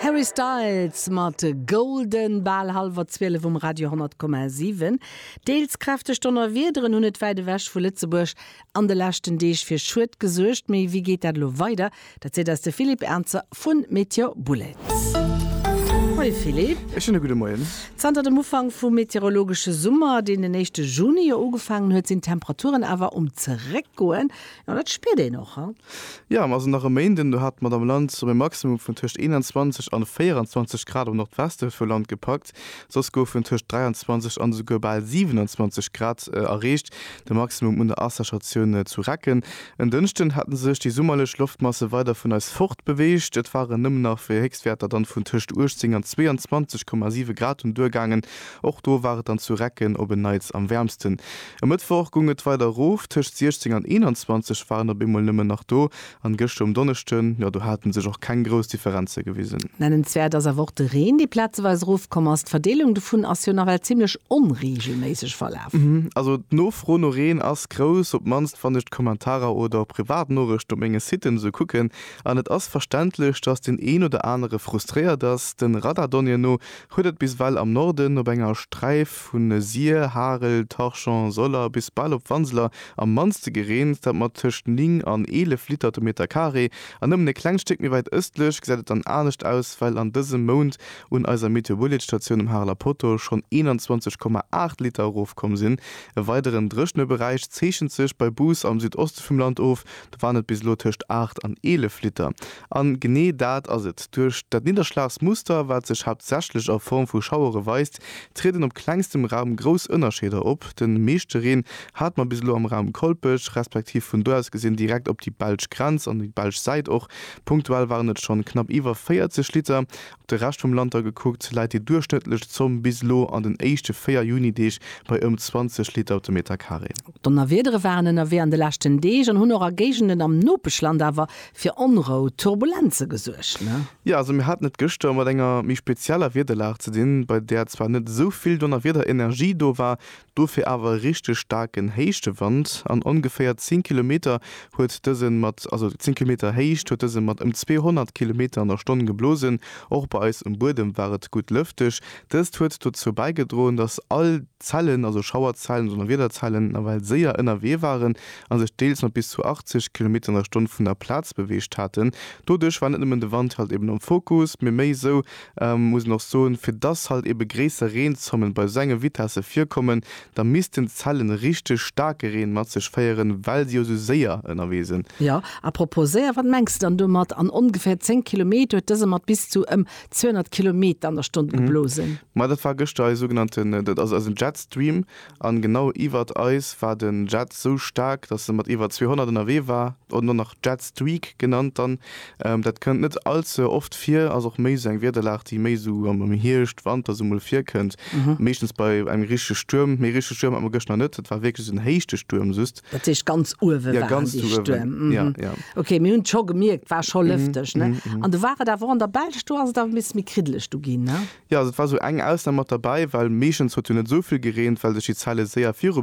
Harry Styles mat Golden, bal hallwer 12 um Radio 10,7. Deels kräfteg Donnerwiederen hunn et wäit ewech vu Lëtzebuerg an de leschten Deeg fir Schued gesuergt. Mee wéi geet dat elo weider? Dat seet eis de Philippe Ernzer vu Meteor Bullets. Moie Philippe. E schéine gudde Moien. Zanter dem Ufank vum meteorologesche Summer, deen den éischte Juni jo ugefaangen huet, sinn d'Temperaturen awer um Zeréckgoen. Jo, dat spiert een och, he? Jo, mer sinn nach e Méinden. Do hat d'Madame Lantz op e Maximum vun tëscht 21 an 24 Grad am Nordweste vu Land gepackt. Soss goufen tëscht 23 an esouguer bal 27 Grad erreecht, de Maximum un der Asserchatioun zu Recken. En Dënschden hätte sech déi summerlech Loftmasse weider vun eis fortbeweegt. Et ware nëmmen nach fir Héchstwäerter dann vun tëscht 18 an 22,7 Grad un d'Duer gaangen. Och do war et dann zu Recken op en Neits am wäermsten. E Mëttwoch gung et weider erof, tëscht 16 an 21 waren op eemol nëmmen nach do, an gëschter um Donneschden, jo, do haten sech och keng grouss Differenze gewisen. Nennenswäert ass awer och de Reen, dee plazeweis erofkomm ass. D'Verdeelung dovun ass jo nawell zimmlech onreegelméisseg verlaf. Also d'Nofro no Reen ass grouss, op d'mannst wann ech d'Kommentarer oder Privatnorechten op menge Siten esou kucken, an et ass verständlech, dass deen een oder anere frustréiert ass. De Radardonnéeën no huet et bis well am Norden op enger Sträif vu Sir, Harel, Torchon, Soller bis bal op Wanseler am mannste gereent, dat mat tëscht 9 an 11 Liter de Meter Carré, an nëmmen e klengt Stéck méi wäit ëstlech gesäit et dann anescht aus, well an dësem Mount un eiser Meteouliedsstatioun um Hareler Poteau schonn 21,8 Liter erofkomm sinn. E weideren dréchene Beräich zeechent sech bei Bous am Südoste vum Land of, Dat waren et bis elo tëscht 8 an 11 Liter. A genee dat ass et. Duerch dat Nidderschlagsmuster, wat sech haaptsächlech a Form vu Schauere weist, trieden op klengstem Raum grouss Ënnerscheeder op. De meeschte Reen hate mer bis elo am Raum Kolpech, respektiv vun do aus gesinn direkt op déi belsch Grenz an déi belsch Säit. Och punktuell waren et schonn knapp iwwer 40 Liter De Rescht vum Land da gekuckt, läit déi duerchschnëttlech Zomm bis elo an den éischte 4 Juni-Deeg bei ëm 20 Liter op de Meterkaree. Donnerwiedere waren ënnerwee an de leschten Deeg an hunn och a Géigenden am Nopeschland awer fir Onrou, Turbulenze gesuergt. Jo, also mir haten et gëschter mat enger méi spezieller Wiederlag ze dinn, bei där zwar net esou vill Donnerwiederenergie do war, Dofir awer e richteg staarken Héichtewand. An ongeféier 10 Kilometer huet dësen mat, also 10 Kilometer Héicht, huet dësen mat ëm 200 Kilometer an der Stonn geblosen. Och bei eis um Buedem war et gutt lëfteg. Dëst huet dozou bäigedroen, dass all Zellen, also Schauerzellen, Donnerwiederzellen, nawell séier ënnerwee waren a sech deels mat bis zu 80 Kilometer an der Stonn vun der Plaz beweegt haten. Doduerch war net nëmmen de Wand halt eben am Fokus, mee méi esou, muss een och soen, fir dass halt ebe gréisser Reenzommen bei esou enge Vitesse virkommen, da missten d'Zellen richteg staarke Reen mat sech féieren, well se jo esou séier ënnerwee sinn. Jo, à propos séier, wat mengs de dann domat? An ongeféier 10 Kilometer huet dëse mat bis zu ëm 200 Kilometer an der Stonn geblosen. Ma dat war gëschter eis sougenannten, dat ass eisen Jetstream, An genau iwwert eis war den Jet sou staark, dass en mat iwwer 200 ënnerwee war, oder och nach Jet Streak genannt dann. Dat kënnt net allze oft vir, ass och méi sou eng Wiederlag, déi méi sou am Hierscht, Wanter sou mol virkënnt, meeschtens bei engem richtege Stuerm. Mee richtege Stuerm hat mer gëschter net, et war wierklech sou en Héichtestuerm just. Dat heescht ganz uewe waren déi Stuerm? Ja, ganz uewen. Ok, mir hunn et scho gemierkt, war scho lëfteg, ne? An do war et awer och an der Belsch, do ass et awer e bësse méi kriddeleg du ginn, ne? Jo, also et war esou eng Ausnam mat derbei, well meeschtens huet jo net esou vill gereent, well sech déi Zelle séier viru.